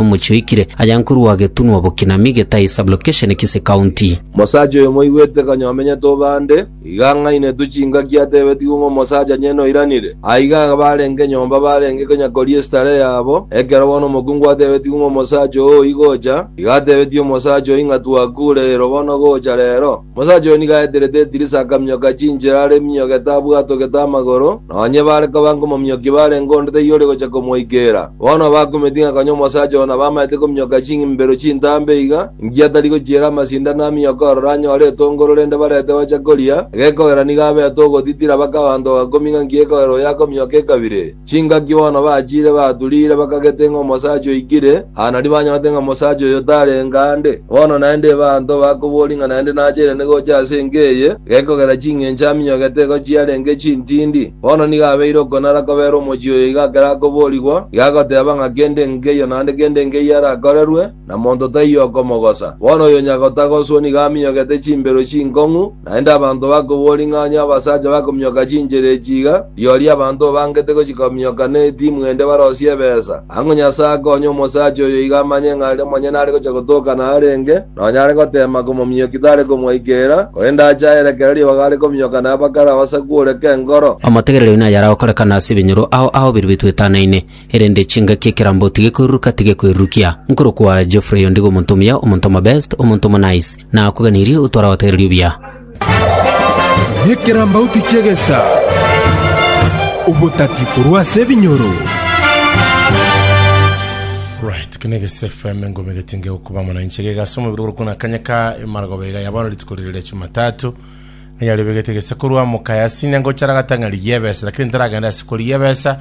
omochie oikire aya nkorwa getunwa bokinami getai sublocation kise county. Omosacha oyo moigwete konya omenyete obande, iga ang'ainetwe chingaki atebetigwe ng'a omosacha nyene oiranire. Aiga abarenge nyomba barenge konya koria estarehe yabo, ekero bono omokungu atebetigwe ng'a omosacha oo oigocha, iga atebetie omosacha oyio ng'a twakureirwe bono gocha rero. Omosacha oyo nigo aeterete edirisa akaminyoka chinchera are eminyogete abwatogete amagoro, na onye bare koba nkomominyokia barenge onde taiyo ore gocha komoikeera. Bono bakumeti ng'a konya omosacha oo nabamaete kominyoka ching'imbero chintambe iga, inki atari gochiera amasindano aminyoke ororo anyore etongoro rende barete bacha koria, egekogera nigo abete ogotitira baka abanto bagakumia ng'a inki gekogera oyo akominyoka ekabire. Chingaki bono bachire baturire bakagete ng'a omosacha oikire, aa nario banyorete ng'a omosacha oyo tarenge aande. Bono naende ebaanto bakoboria ng'a naende nachairane gocha ase enka eye, gekogera ching'encho aminyogete igo chiarenge chintindi. Bono nigo abeire okonara kobera omochie oyo iga akere akoborigwa, iga agoteeba ng'a kende nkeiyo naende kende nkeiyo arakorerwe, na monto taiyo okomogosa. Bono oyo onye agotagoswa nigo aminyogete chimbero chinkong'u, naende abanto bakobua ring'anyo abasacha bakominyoka chinchera echi iga, rirorio abanto obangete gochikominyoka ne etimu ende barosie ebesa. Ang'o Nyasae akonye omosacha oyo iga amanye ng'a aria monyene are gocha gotokana arenge, nonya are goteema komominyokia tare komwaikerera, korende ache aere kera ribaga are kominyoka naye bakare abasaku ore k'enkoro. Omotegereri oyo naye aragokorekana ase ebinyoro ao aho birwe bitwetanaine. erende chingaki ekerambo tigekoiruruka tigekwerurukia. Nkorokwa Geoffrey ondigo omonto omuya, omonto omobest, omonto omonice. Nakoganirie otware agotegereri obuya. Nekerambauti ki'egesa, obotati korwa ase ebinyoro. Right, kene Gese FM engome getinge gokuba mono inche gega ase omobere ore kuna kanya ka emaragoba iga yabana rituko rire ria Jumatatu ng'a yari begete gese korwa mokaya sine ngochara gatang'ari yebesa lakini ntaragenda ase kori yebesa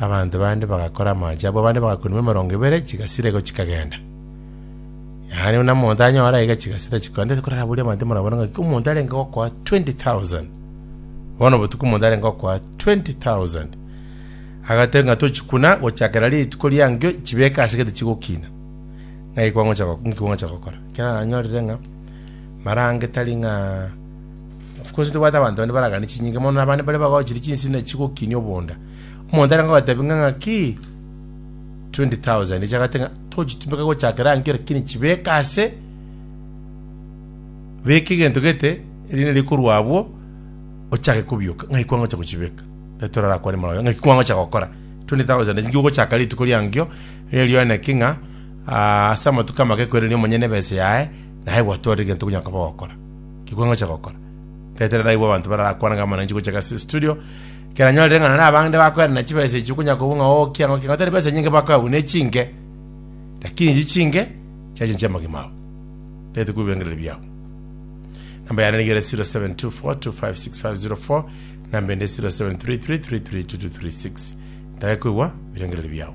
Abanto bande bagakora amache abo, abande bagakunigwa emerongo ebere, chigasira igo chikagenda. Yaani buna omonto anyora iga chigasira chikogenda, ndeti koraburia abanto emerongo ebere ng'aki omonto arenge gokoa 20,000. Bono obotuko omonto arenge gokoa 20,000. Agateba ng'a tochikuna gochakera rituko ria nkio chibeke ase gete chigokina. Ng'ai kwangocha go- nki kwangocha gokora? Ekio nanyorire ng'a marange tari ng'a of course ntobwate abanto bande baragani chinyinga mono na abande bare bagochiri chinsina chigokinia obonda. Omonto arange gobatebia ng'a ng'aki 20,000 echi agoteba ng'a tochitumeka gochakera nkio lakini chibeke ase beka egento gete erinde rikorwa abwo ochake kobioka ng'ai kwangocha gochibeka tari torarakwane mono ng'aki kwangocha gokora 20,000 echi nkogochaka rituko riankio erio naki ng'a aa ase amatuko amake kwereni omonyene ebesa yaye naye gwatware egento okonya koba ogokora ki kwangocha gokora tari tore naigwe abanto bararakwana ng'a bono ninche gocha gase estudio Keranyorire ng'a nonye abande bakoerana chibesa echio konya kobua ng'a oo kiang'o kiang'o tari besa nyinge bakoe agwo ne chinke, lakini echi chinke chiache inche amagima ao, tagete korwa ebirengererio biao. Namba yane nigo ere 0724256504 namba ende 0733332236 ntake koigwa ebirengererio biao.